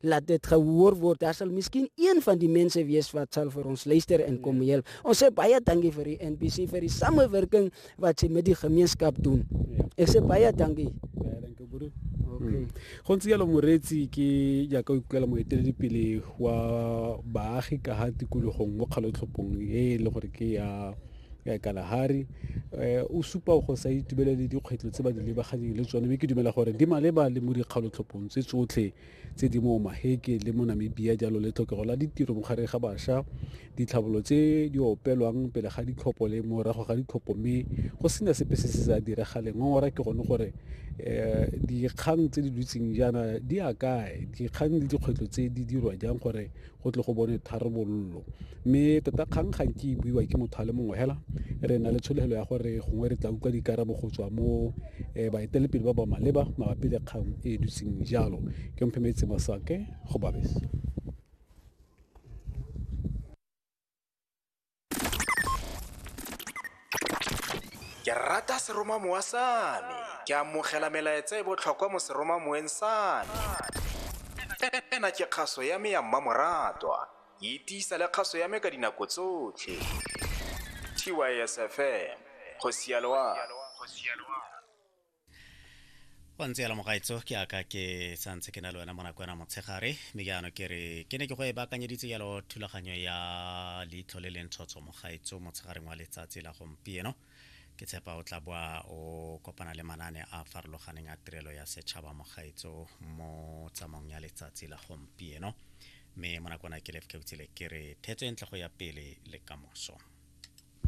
laat dit gehoor word. Daar sal miskien een van die mense wees wat sal vir ons luister en kom ja. help. Ons sê baie dankie vir die NBC vir die samewerking wat sy met die gemeenskap doen. Ja. Ek sê baie dankie. Baie dankie broer. Okay. Hmm. Go ntse yalo moretsi ke jaaka o ikutlwela moeteledipele wa baagi ka ga tikologong mo kgalotlhopong e e le gore ke ya ya kalahari um eh, o supa go sa itubelele dikgwetlho tse ba di lebaganeng le tsone mme ke dumela gore di maleba le mo dikgalotlhophong tse tsotlhe tse di mo Maheke le mo Namibia jalo le tlhokego la ditiro mo gare ga basha, ditlhabolo tse di opelwang pele ga ditlhopho le morago ga ditlhopho mme go sena sepe se se sa diragale. Ngongora ke gone gore um dikgang tse di dutseng jaana di a kae, dikgang le dikgwetlho tse di dirwa jang gore go tle go bone tharabololo mme tota kgang ga nke e buiwa ke motho a le mongwe fela re na le tshologelo ya gore gongwe re tla utlwa dikarabo go tswa mo um baetelepele ba ba maleba mabapi le kgang e e dutseng jalo ke mphemetse masake go babese ke rata seromamowa sa me ke amogela melaetsa e botlhokwa mo seromamoweng sa me ena ke kgaso ya me ya mmamoratwa e tiisa le kgaso ya me ka dinako tsotlhe tysfm go sialoa go ntse yala mogaetso ke aka ke santse ke na le wena mo nako ena motshegare mme ke ano ke re ke ne ke go e baakanyeditse yalo thulaganyo ya leitlho le lentshotsho mogaetso motshegareng wa letsatsi la gompieno ke tshepa o tla boa o kopana le manane a farologaneng a tirelo ya setšhaba mogaetso mo tsamaong ya letsatsi la gompieno mme mo nakona ke lefkeutsile ke re thetso e ntle go ya pele le kamoso